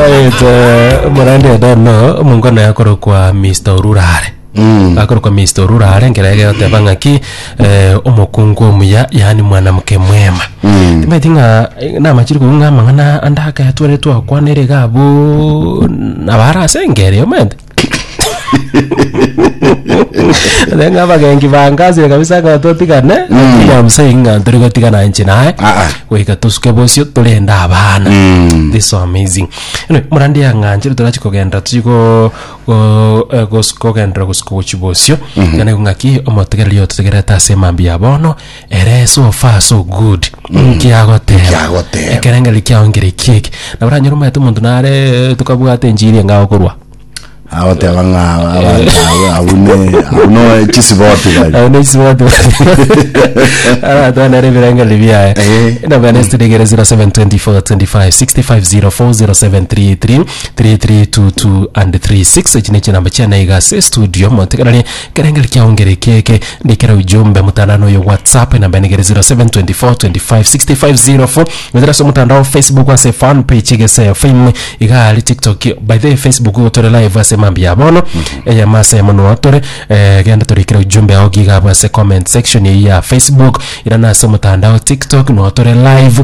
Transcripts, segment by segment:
Ayete morandi edeno omongwana yakorokwa Mr. Orurare akorokwa Mr. Orurare nkere egegoteba ng'aki eh, omokungu omuya yaani mwanamke mwema timaeti ng'a eh, namachiri kobua ng'a amang'ana ande akayatware twakwana ere iga abwo nabara ase engeri omanyete Nenga abagenki bankasire kabisa ng'a totigane Williams eye ng'a tori gotigana inche naye Ah, ah. goika tosuke bosio torende abana Mm. this so amazing anyway murandi yang'anchire torachi kogenda tochi go go- eh, gos- kogendera gosiko gochi bosio ng'ana igo ng'aki omotegereri ototegerete ase emambia ya bono Ere so far so good inki agoteba Inki agoteba. ekerengeri kiao nkere kieki na oranyore omanyete omonto nare tokabwate enchiri enga okorwa agoteba ng'a abanto abo- abwo ne- abwo no chisiboti bari Aye nesibwate aratwanera ebirengeri biaye Eh. enabana esitiregere 072425650407333322 and 36 echi nechinamba chiana iga ase estudio montekeranie Ekerengeri kiaongera ekieke ndikera ujumbe mutandao noyo whatsapp enamba enegere 0724256504 gochera ase omotandao facebook ase fan page egese fm iga aria tiktok by the way facebook igo tore live ase mambia ya bono eyemo ase eyemo noo tore eh, genda torekere ujumbe ao giga abwo ase comment section eyio ya facebook irana ase omotandao tiktok noo tore live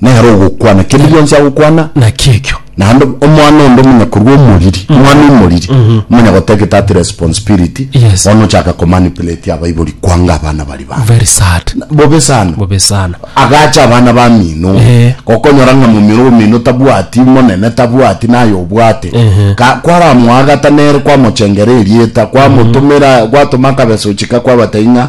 nere ogokwana kende gionsi agokwana Naki ekio. naende omwana onde omonye korwa omoriri omwana omoriri omonye goteba getati responsibility Yes. bono ochaka komanipulate abaibori kwanga abana bari babo Very sad. bobe sana Bobe sana. agacha abana bamino Eh. gokonyora ng'a momino omino tabwati monene tabwati naye obwate Ehe. Ka- kwaramoagata nere kwamochengera erieta kwamotomera gwatoma akabesa ochika kwabatai ng'a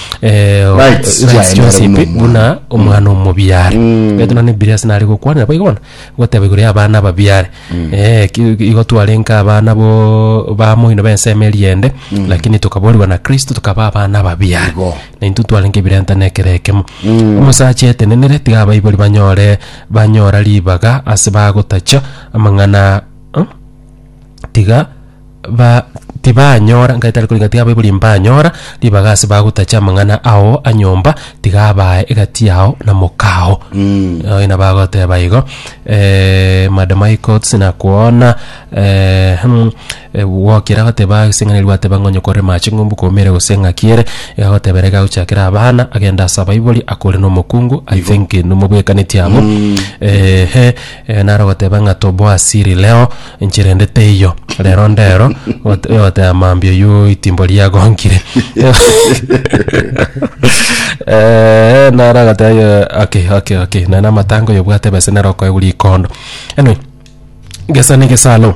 eh, o- Rights rights chiaye chionsi nere buna pi- buna omwana. omwana omobiare betu nane bibilia ase nare gokwanera boigo bono goteba igoro ya abana ababiare Eh, ki- ki- igo twarenka abana bo bamoino bensemo eriende lakini tokaborigwa na kristo tokaba abana ababiare Igo. na intwe twarenge ebirenta na ekero ekemo omosacha etenenere tiga abaibori banyore banyora ribaga ase bagotacha amang'ana Huh? tiga ba tibanyora ngai tari korigana tiga abaibori mbanyora ribaga ase bagotacha amang'ana ao a nyomba tiga abae egati yao na mokao Mm. Oyo nabagoteba igo eh, madam high court sinakwona eh, hmm, eh, gokira goteba ase eng'ana eria gwateba ng'a onye okore mache ng'umbu komere gose ng'aki ere iga agotebera iga agochakere abana agende ase abaibori akore na omokungu i think nomobwekaneti abwo ehe. Ee, nare ogoteba ng'a toboa siri leo, inche rende teiyo. Rero ndero, ot- ogoteba mambia oyio itimbo riagongire. Eh, nare agoteba yo, okay, okay, okay. None amatanga oyo obwate bese nere okoegwa rikondo. Anyway, gesa negesalo.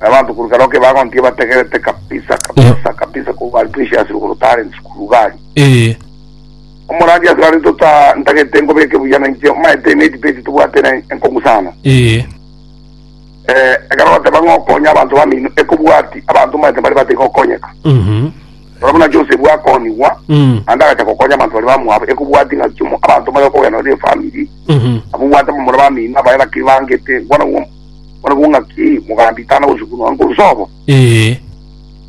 na abanto korwa ekero kebagontiga bategerete kabisa kabisa kabisa korwa bari precious rugoro talent sukuru gari ee omorandia ase rari tota ntagete nkobeke buya na inche omaete emate page tobwate na enkongu sana ee eh ekero bateba ngokonya abanto bamino ekobwati abanto omaete bari bate gokonyeka mhm Ora buna Joseph akonyigwa mm anda agacha gokonya abanto bari bamwabo ekobwati ng'a chimo abanto bayo kogenda ne family mhm abubwate bamura bamino abaye bakiri bangete bwana Barabwo ng'aki mogandiitana gosukunwa nkorwa sobo? Ee.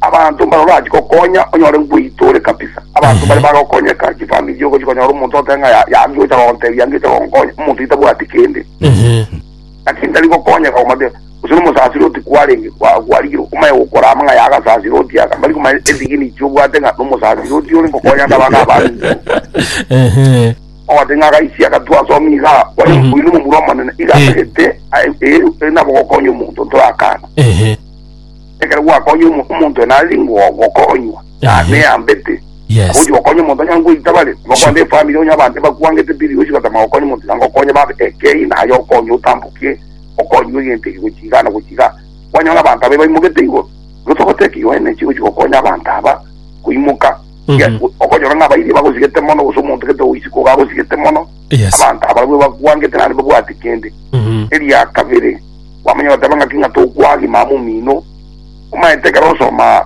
Abanto mbare orachi gokonya onyore ngoita ore kabisa. Abanto mbare bagokonyeka, chifamiri chi'ogochi konyora omonto ote ng'a ya- yaki gocha gontebia ngecha gonkonya, omonto itabwati kende. Ehe. Naki ntari gokonyeka komate, gose nomosasire oti kwarenge, kwa- kwarigire omaye gokora ama ng'a yagasasire oti aka, mbari komanya esignature obwate ng'a nomosasire oti ore ngokonya ande abana abange. Ehe. Ogoteba ng'a agaisia agatwa ase omiga oye Mhm. oino momura omonene, iga Eh. atagete aye ere ere nabo gokonya omonto ntorakana. Ehe. Ekero gwakonya omo- omonto ena ari ngo- gokonywa, na- Ehe. neyambete. Yes. Agochi gokonya omonto onye ngoita bare, Sure. bakwande efamiri onye abande bakwangete biri gochi gotama gokonya omonto nanga okonye babe ekei naye okonye otambokie okonywe egento eki gochi iga na gochi iga. Kwanyora abanto abe baimogete igoro, gose ogoteba ki oene chigochi gokonya abanto aba koimoka Yes, Mhm. go- okonyora ng'a abairi bagosigete mono gose omonto gete oisi koga agosigete mono Yes. abanto abarabwo bakwangete naende babwati kende Mhm. eria kabere kwamanya bateba ng'aki ng'a tokwagi mama omino omaete ekero osoma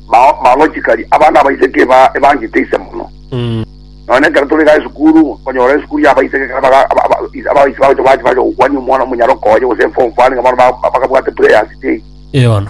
ma- malogically abana abaiseke eba- ebangete ise mono Mhm. none ekero tore ga esukuru onyora esukuru ya abaiseke ekero baga- aba- aba- is- abaisi bagocha bachi bacha gokwania omwana omonyaroka oye gose form four niga bono ba- ba- bakabwate prayers day Eono.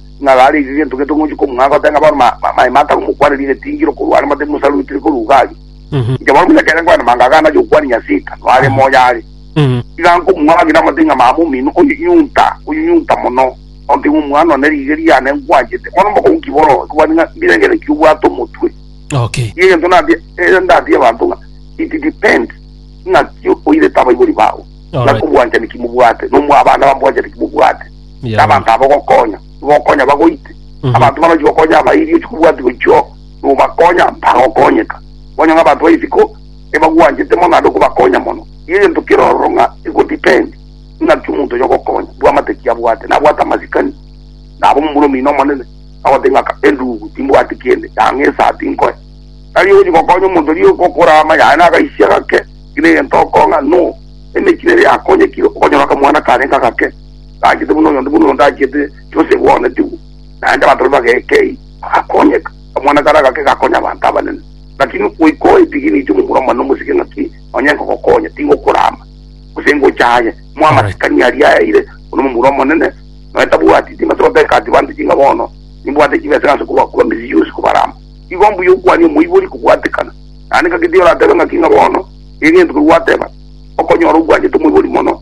ng'a gare aise gento gento ng'ochi komung'a agote ng'a bono ma- ma- maema atano mokwane rigetingiro korwa are mate Musa rwitire korwa Ugari. Mhm. Inche bono buna kere nkwane manga agana yokwani Nyasika, noare Aha. moyo are. Mhm. Iga nkomung'a agire amate ng'a mama omino oyo nyunta, oyo nyunta mono. Onte ng'a omwana one riige riane nkwanchete. Bono mbokong'u ki boro, nkobwati ng'a mbirengere ki obwate omotwe. Okay. Iga egento natie, eh, ndatie abanto ng'a it depends ng'aki oirete abaibori bao. Alright. Ng'aki obwanchani ki mobwate, nomwa abana bamobwanchani ki mobwate. Yabo. nabanto abo ogokonya nibokonya bagoite Mhm. abanto banochi gokonya abairi ochikobwati gochio nobakonya bagokonyeka onye ng'a abanto baisiko ebagwanchete mono naende okobakonya mono igo egento kerororo ng'a egodepend ng'aki omonto oyo ogokonya bwamate ki abwate nabwate amasikani nabo momura omino omonene agote ng'aka endugu timbwati kende yang'a esati nkoe tari ogochi gokonya omonto oria ogokora ama yaye nagaisia gake kina egento okong'a no emechie nere yakonyekire okonyora akamwana karenge agake Tachete buna oyonde buna oyonde achete, Josefu oonetiwe, naende abanto baria bagekei, bagakonyeka. Kamwana karia agake gakonya abanto abanene. Lakini goika oe tigi ninche omomura omone omosike ng'aki nonye nkogokonya, tingokorama, gose ngocha aye. Moe amasikani aria ayaire, oyo nomomura omonene, nonya tabwati chimbesa goteka ase banto ching'a bono, nimbwate chibesa ng'a nse kobakuba emesii yonsi kobarama. Igo mbuya okwanie omoibori kobwatekana. Naende ng'ake tiga oratebe ng'aki ng'a bono, tiga egento keria gwateba, okonyora obwanchete omoibori mono.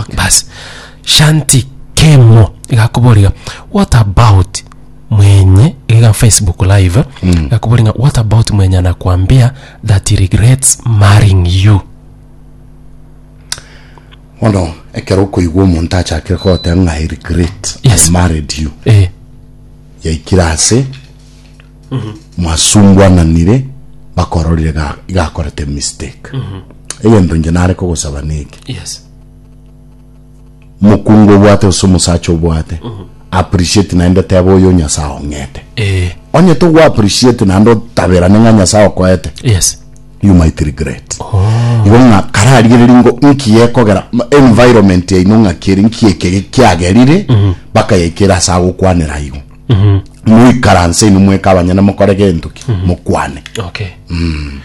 Okay. basi shanti kemo igakuboria what about mwenye iga facebook live mm. igakuboria what about mwenye anakwambia that he regrets marrying you bono ekero okoigwa omonto achakire kogoteba ng'a i regret Yes. i married you eh. yaikire ase mwasungwananire bakororire ga- igakorete mistake egento inche nare kogosaba neke Yes. mokungu obwate gose omosacha obwate appreciate naende teba oyo nyasaye ong'ete Eh. onye togo appreciate naende otaberane ng'a nyasaye okoete Yes. you might regret igo ng'a kararigereri ngo inki yekogera ma- environment yaino ng'akere inki eke kiagerire bakayaikera ase agokwanera igo Moikaranse inwe mweka abanyene mokore gento ki? Mokwane. Okay. Mm.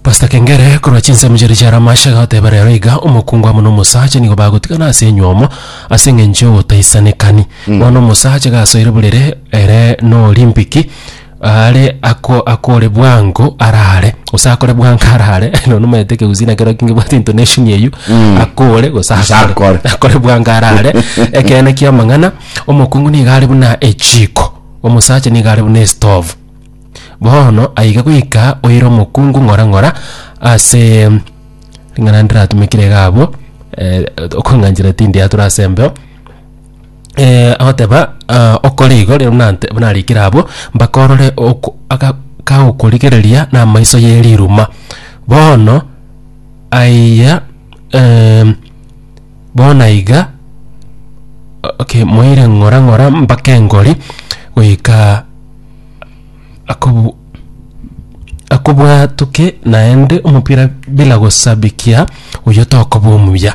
Pastor Kengere, korwa chinsemo chiria chiare amashe goteba rero iga, omokungu amo na omosacha nigo bagotigana ase enywomo ase eng'encho y'ogotaisanekani. Mm. Bono omosacha gasoire burere ere n'Olimpiki, are ako akore bwango arare gose akore bwango arare nonya nomanyete ekegusii nakero ki ngebwate intonation eywo, Mm. akore gose Gose akore. akore. Akore bwango arare, ekeene ki'amang'ana. Omokungu nigo are buna echiiko, omosacha nigo are buna esitovu. Bono aiga goika oire omokungu ng'ora ng'ora ase ring'ana ndiratumekire iga abwo eh, okong'anchera tindiatura ase embeo eh, agoteba ah, okore igo rero buna nte- buna arikire abwo mpaka orore oko- aga- kagokorigereria na amaiso ye riruma bono aiya em, Bono iga, okay, moire ng'ora ng'ora mpaka engori goika akobu akobwatoke naende omopira bila gosabikia oyio tokoba omuya.